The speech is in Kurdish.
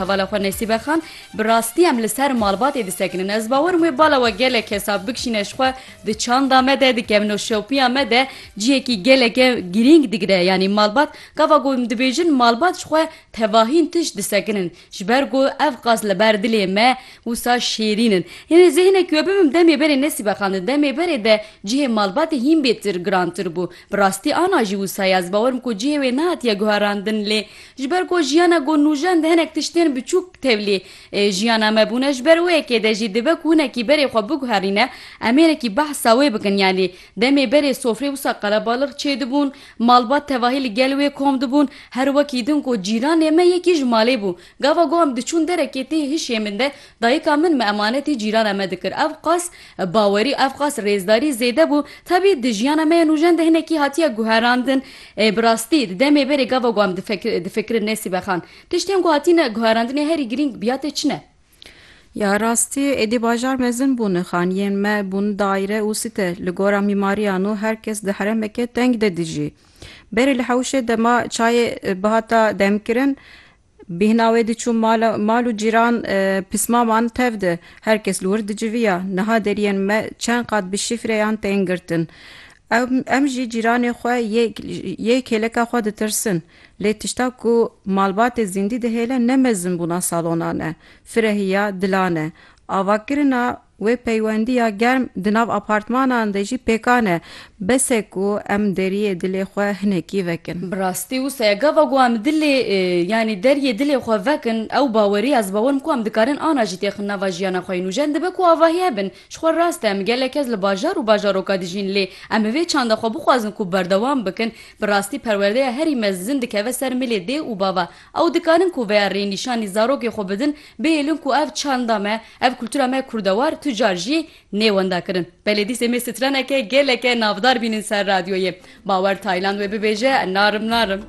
Hevala xwe Nesîbe Xan, Bi rastî em li ser malbatê disekinin. Ez bawer im wê bala we gelek hesab bikişîne ji xwe di çanda me de, di kevnoşewpiya me de cihekî geleke girîng digire. Yanî malbat, gava ku em dibêjin malbat ji xwe tevahîn tişt disekinin. Ji ber ku ev qas li ber dilê me wisa şêrîn in. Hinê zê hinekî we bibim demê berê Nesîbe Xan di demê berê de cihê malbatê hîn bêtir girantir bû. Bi rastî ana jî wisa ye. Ez bawer im ku cihê wê nehatiye guherandin lê Ji ber ku jiyana ku nûjen di hinek tiştên biçûk tevlî jiyana me bûne, ji ber wê yekê de jî dibe ku hinekî berê xwe biguherîne, em hênekî behsa wê bikin. Yanî demê berê sofrê wisa qelebalix çêdibûn, malbat tevahî li gel wê kom dibûn, her wekî din ku cîranê me yekî ji malê bû. Gava ku em diçûn derekê tê hişê min de dayika min me emanetê cîrana me dikir. Ev qas Bawerî ev qas rêzdarî zêde bû, tevî di jiyana me ya nûjen de hinekî hatiye guherandin. Ê bi rastî di demê berê gava ku em difikirin Nesîbe Xan, tiştên ku hatîne guherandinê herî girîng biya tê çi ne? Ya rastî êdî bajar mezin bûn, xaniyên me bûn daîre û site, li gora mîmariyan û her kes di heremeke teng de dijî. Berê li hewşê dema çayê bihata demkirin, Bîhna wê diçû mal mal û cîran pismaman tev di. Her kes li wir diciviya. Niha deriyên me çend qat bi şîfreyan tên girtin. Em em jî cîranê xwe yê yê kêleka xwe ditirsin. Lê tişta ku malbatê zîndî dihêle ne mezinbûna salonan e. Firehiya dilan e. Avakirina Wê peywendiya germ di nav apartmanan de jî pêkan e. Bes e ku em deriyê dilê xwe hinekî vekin. Bi rastî wisa ye. Gava ku em dilê yanî deriyê dilê xwe vekin, ew bawerî ez bawer dikim ku em dikarin ana jî têxin nava jiyana xwe yê nû. Jin dibe ku avahî hebin. Ji xwe rast e em gelek kes li bajar û bajaroka dijîn lê em bi vê çanda xwe bixwazin ku berdewam bikin, bi rastî perwerdeya herî mezin dikeve ser milê dê û bava. Ew dikarin ku vêya rê nîşanî zarokê xwe bidin, bihêlin ku ev çanda me, ev kultura me kurdewar tu car jî nê wenda kirin. Belê dîsê mê straneke geleke navdar bînin ser radyoyê. Bawer Tayland wê bibêje narim narim.